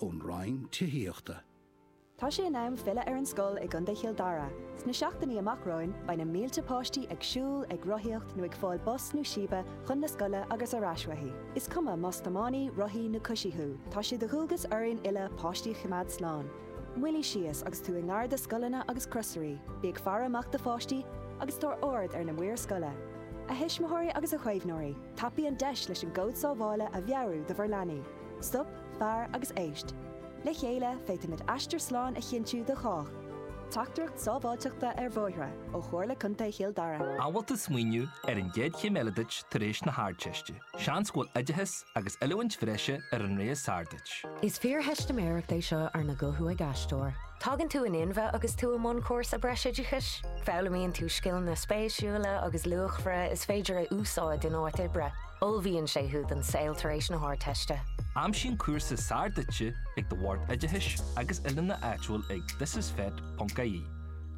ón Roinn Tithíochta. Tá sé in am filleadh ar an scoil i gContae Chill Dara. Sna seachtainí amach romhainn, beidh na mílte páistí ag siúl, ag rothaíocht nó ag fáil bus nó síbe chun na scoile agus ar ais uaithi. Is cuma más tiománaí, rothaí nó coisí thú, tá sé de dhualgas orainn uile páistí a choimeád slán. Moilligh síos agus tú i ngar do scoileanna agus crosairí, bí ag faire amach do pháistí agus tabhair aird ar na maoir scoile. A thuismitheoirí agus a chaomhnóirí, tapaigh an deis leis an gcód sábhála a mheabhrú do bhur leanaí. Stop, fair agus éist. Le chéile, féadfaimid aistear slán a chinntiú do chách. Teachtaireacht sábháilteachta ar bhóithre ó Chomhairle Contae Chill Dara. An bhfuil tú ag smaoineamh ar an gcéad chéim eile duit tar éis na hArdteiste. Seans go bhfuil oideachas agus oiliúint bhreise ar an rogha is fearr duit. Is fíortheistiméireacht é seo arna guthú ag aisteoir. Tagann tú in inmhe agus tú i mbun cúrsa breisoideachais. Foghlaimíonn tú scileanna spéisiúla agus luachmhara is féidir a úsáid in áit oibre. Ullmhaíonn sé thú don saol tar éis na hArdteiste. Aimsigh an cúrsa is fearr duitse ag do Bhord Oideachais agus Oiliúna áitiúil ag thisisfet.ie,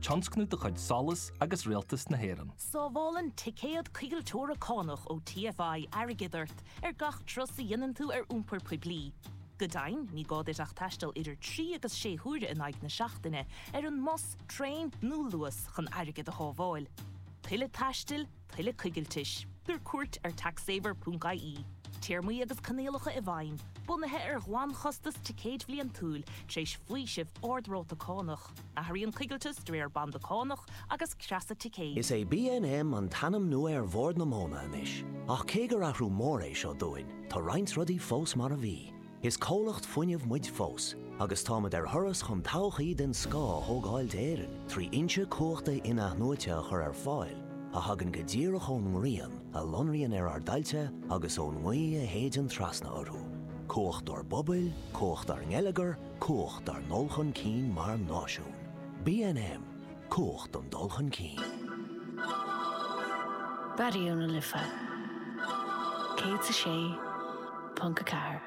tionscnamh de chuid SOLAS agus Rialtas na hÉireann. Sábhálann ticéad Coigilteora Cánach ó TFI airgead ort ar gach turas a dhéanann tú ar iompar poiblí. Go deimhin, ní gá duit ach taisteal idir trí agus sé huaire in aghaidh na seachtaine ar an mbus, traein nó Luas chun airgead a shábháil. Tuilleadh taistil? Tuilleadh coigiltis. Tabhair cuairt ar taxsaver.ie. Téarmaí agus coinníollacha i bhfeidhm, bunaithe ar ghlanchostas ticéid bhliantúil, tar éis faoiseamh ard-ráta cánach. Athraíonn coigilteas de réir banda cánach agus creasa ticéid. Is é BNM an t-ainm nua ar Bhord na Móna anois, ach cé gur athrú mór é seo dúinn, tá roinnt rudaí fós mar a bhí. Is comhlacht fuinnimh muid fós agus táimid ar thuras chun todhchaí den scoth a thógáil d'Éirinn trí fhoinse cumhachta in-athnuaite a chur ar fáil a thagann go díreach ón ngrian a lonraíonn ar ár dtailte agus ón ngaoth a shéideann trasna orthu. Cumhacht dár bpobail, cumhacht dár ngeilleagar, cumhacht dár ndul chun cinn mar náisiún. BNM, Cumhacht don dul chun cinn. Raidió na Life 106.4.